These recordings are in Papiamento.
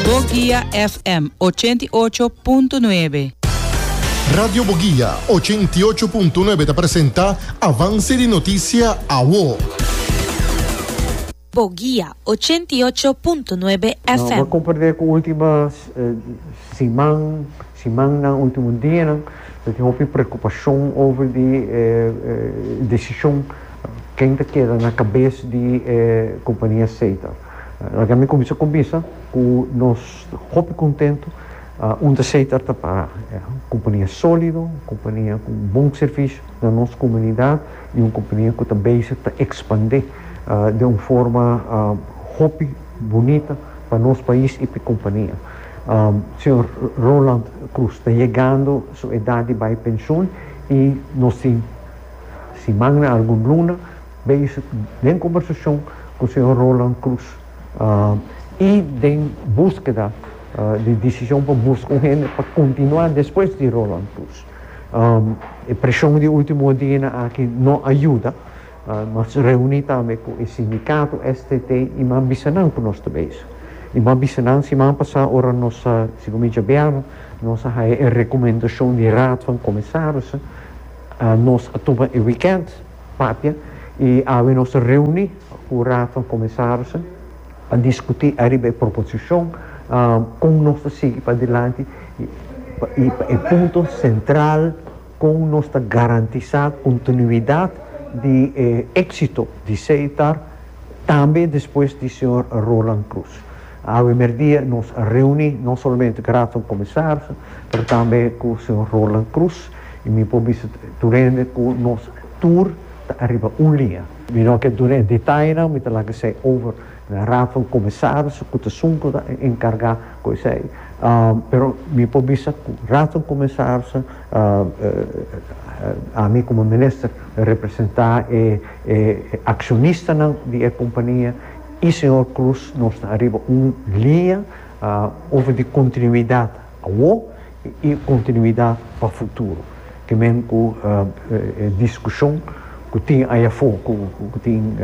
Boguia FM ochenta i ocho punto nuebe. Radio Boguia ochenta i ocho punto nuebe ta presenta Avance di Noticia Awo. Boguia ochenta i ocho punto nuebe No por FM. compardé cu ultima siman, simannan, ultimo dianan, ta tin hopi preocupacion over di e decision ken ta keda na cabes di e compania Seta. Laga mi cuminsa cumbisa cu nos hopi cuntento un ta seta ta para cumpania solido, cumpania cu bon servicio na nos comunidad y un cumpania cu ta bezig ta expande den un forma hopi bunita pa nos pais y pa e cumpania. Señor Roland Cruz ta yegando su edad di bay pension y nos tin siman na algun luna, Base den conversacion cu señor Roland Cruz y den buskeda di decision pa buska un hende pa continua despues di Roland Cruz. E presion di ultimo dianan aki no a yuda, nos reuni tambe cu e sindicato STT y mi a bisa nan cu nos ta bezig y mi a bisa nan siman pasa ora nos a, segun mi djabianan, nos a haya e recomendacion di raad van comisarissen, nos a tuma e weekend. Papia y awe nos ta reuni cu Raad van Commisarissen pa discuti ariba e proposicion con nos ta sigui padilanti y pa e punto central con nos ta garantisa continuidad di e exito di Seitar tambe despues di Señor Roland Croes. Awe merdia nos reuni no solamente cu Raad van Commisarissen pero tambe cu Señor Roland Croes. y mi por bisa tur hende cu nos tur ta ariba un liña. Mi no ke duna e detainan, mi ta laga esey over na Raad van Commissarissen cu ta sunco ta encarga cu esey. Pero mi por bisa cu Raad van Commissarissen, ami como Minister representa e accionistanan di e compania y señor Croes, nos ta ariba un liña over di continuidad. Awo i kontinuidat pa futuro. Ke men ku e diskushon ku tin ai afó ku tin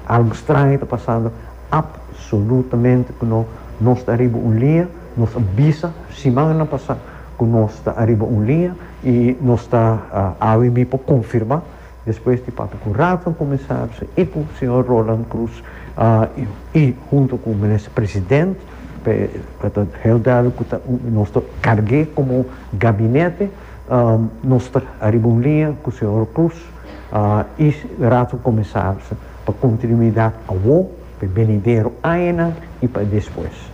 algu straño ta pasando, apsolutamente ku no, nos ta ariba un liña, nos a bisa simannan pasá ku nos ta ariba un liña i nos ta awe mi por konfirmá. Despues di papia ku Rafa Kumisaris i ku señor Roland Cruz i huntu ku menes president pa ta hel duidelijk ku ta nos ta karg'é komo gabinete nos ta ariba un liña ku señor Cruz i Raad van Commissarissen pa kontinuidat awo pa e benidero añanan i pa e despues.